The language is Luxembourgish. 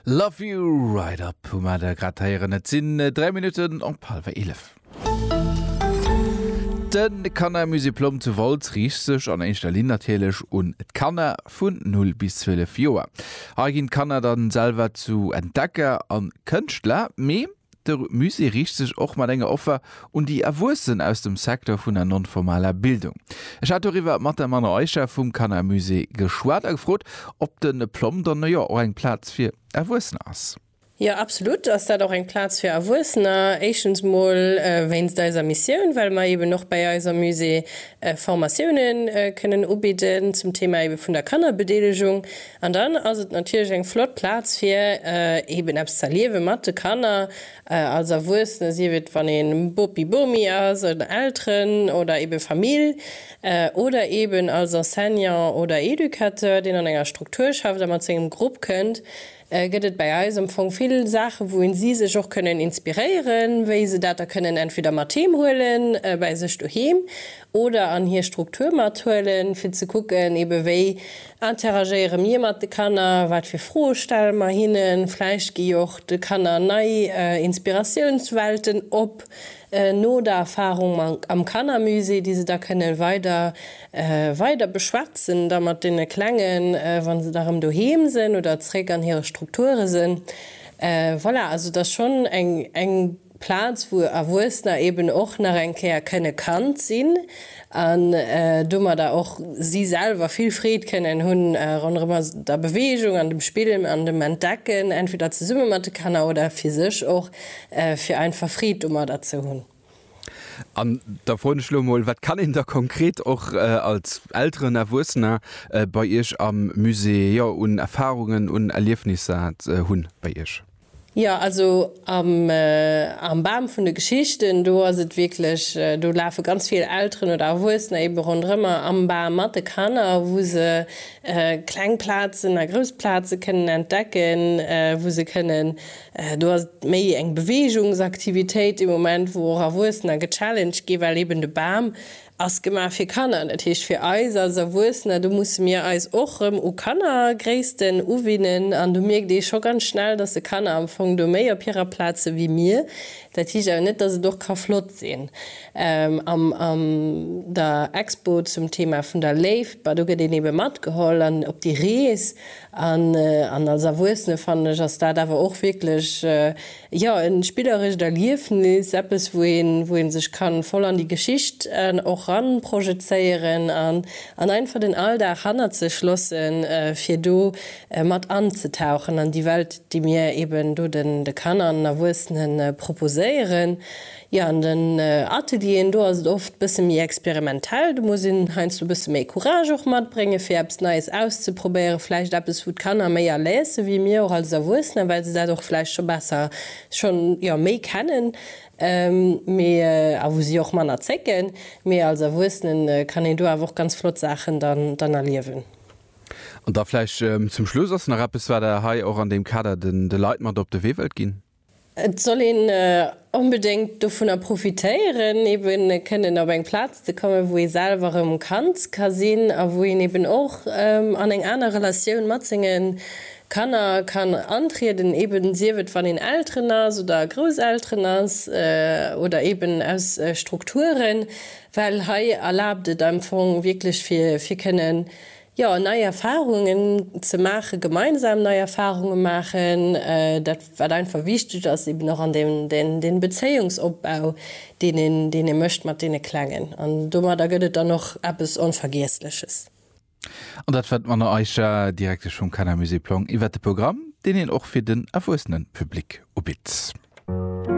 Love you right up hu mer der grad héieren. Et sinn 3 Minutten op hallwer 11. De Kannermusée Plomm zu Wolz riicht sech an éischter Linn natierlech un d'Kanner vun 0 bis 12 Joer. Hei ginn d'Kanner dann selwer zu Entdecker a Kënschtler, mee De Musée riicht sech och mat enger Offer un déi Erwuessen aus dem Secteur vun der non-formaler Bildung. Ech hat doriwwer mat der Manon Eischer vum Kannermusée geschwat a gefrot, ob de Plom dann jo och eng Plaz fir Erwuessener ass. Jo, absolut ass dat och eng Plaz fir Erwuessener. Éischtens mol wéinst eiser Missioun, well mer eben och bäi eis am Musée Formatiounen kënnen ubidden zum Thema ebe vun der Kannerbedeelegung. An dann ass et natierlech eng flott Plaz fir eben eppes ze erliewe mat de Kanner als Erwuessene, sief et wann ee Bopi, Bomi ass oder Elteren oder eben Famill oder eben als Enseignant oder Educateur, deen an enger Struktur schafft a mat sengem Grupp kënnt, gëtt et bäi eis am Fong vill Saachen, wou en si sech och kënnen inspiréieren, wéi se dat da kënnen entweder mat heem huelen, bäi sech doheem oder an hir Struktur mathuelen, fir ze kucken eben wéi. Interagéiere mir mat de Kanner? Wat fir Froe stelle mer hinnen? Vläicht gi jo och de Kanner nei Inspiratiounswelten op no der Erfarung am Kannermusée, déi se da kënnen weider weider beschwätzen da mat deene Klengen, wann se da erëm doheem sinn oder zeréck an hire Strukture sinn. Voilà, also et ass schonn eng eng. Plaz wou Erwuessener eben och nach eng Kéier kënne Kand sinn an domadder och si selwer vill Freed kënnen hu ronderëm der Beweegung an dem Spill an dem Entdecken, entweder zesumme mat de Kanner oder fir sech och, fir einfach Freed domadder ze hunn. An da froen ech elo emol, Wat kann een da konkret och als Elteren, Erwuessener bei Iech am Musée, jo un Erfarungen, un Erliefnisser hunn bei Iech? Jo, also am Bam vun de Geschichten, do ass et wierklech, do lafe ganz vill Elteren oder Erwuessener eebe ronderëmmer am Bam mat de Kanner, wou se kleng Plazen a grouss Plaze kënnen entdecken, wou se kënnen, do ass et méi eng Beweegungsaktivitéit dee Moment, wou och Erwuessener gechallenged ginn, well eeben de Bam Ass gemaach fir Kanner, dat heescht fir eis als Erwuessener. Do musse mir eis och erëm u Kannergréissten uwinnen an do mierkt ee scho ganz schnell, dass de Kanner am Fong do méi op hirer Plaz si wéi mir. Dat heescht awer net, dass et och ka flott sinn am an der Expo zum Thema vun der Léift. Bah do gëtt een ebe matgeholl an op déi Rees an als Erwuessene fannen ech ass dat awer och wierklech Jo, e spillerescht Erliefnis, eppes wou een, wou een sech kann voll an déi Geschicht och ran projezéieren an an einfach den Alldag hannert sech lossen fir do mat anzetauchen an déi Welt déi mir eben do den Kanner an den Erwuessenen proposéieren. Jo, an den Atelieren do ass et oft bësse méi experimentell. Do muss een heiansdo bësse méi Courage och matbréngen, fir eppes Neies auszeprobéieren. Vläicht eppes, wou d'Kanner méi à l'aise si wéi mir och als Erwuessener, well se dat och vläicht scho besser, schonn, jo, méi kennen, mee, a wou si och manner zécken. Mee als Erwuessenen kann een do awer och ganz flott Saachen dann, dann erliewen. An da vläicht zum Schluss, Ass nach eppes, wat Der hei och an deem Kader de Leit mat op de Wee wëllt ginn? Et soll een onbedéngt dovunner profitéieren, eben kënnen op eng Plaz ze kommen, wou ee selwer erëm Kand ka sinn a wou een eben och an eng aner Relatioun mat senge Kanner kann antrieden, eben sief et, wann een Elteren ass oder Grousselteren ass oder eben aus Strukturen, well hei erlaabt et am Fong wierklech, fir kënnen Jo, nei Erfahrungen ze maachen, gemeinsam nei Erfahrungen maachen, dat wat einfach wichteg ass, eben och an deem den Bezéiungsopbau deen een deen ee mécht mat deene Klengen an domadder gëtt et dann och eppes Onvergiessleches. An dat war d'Mona Eischer, Direktesch vum Kannermusée Plong iwwert de Programm deen een och fir den erwuessene Public ubitt.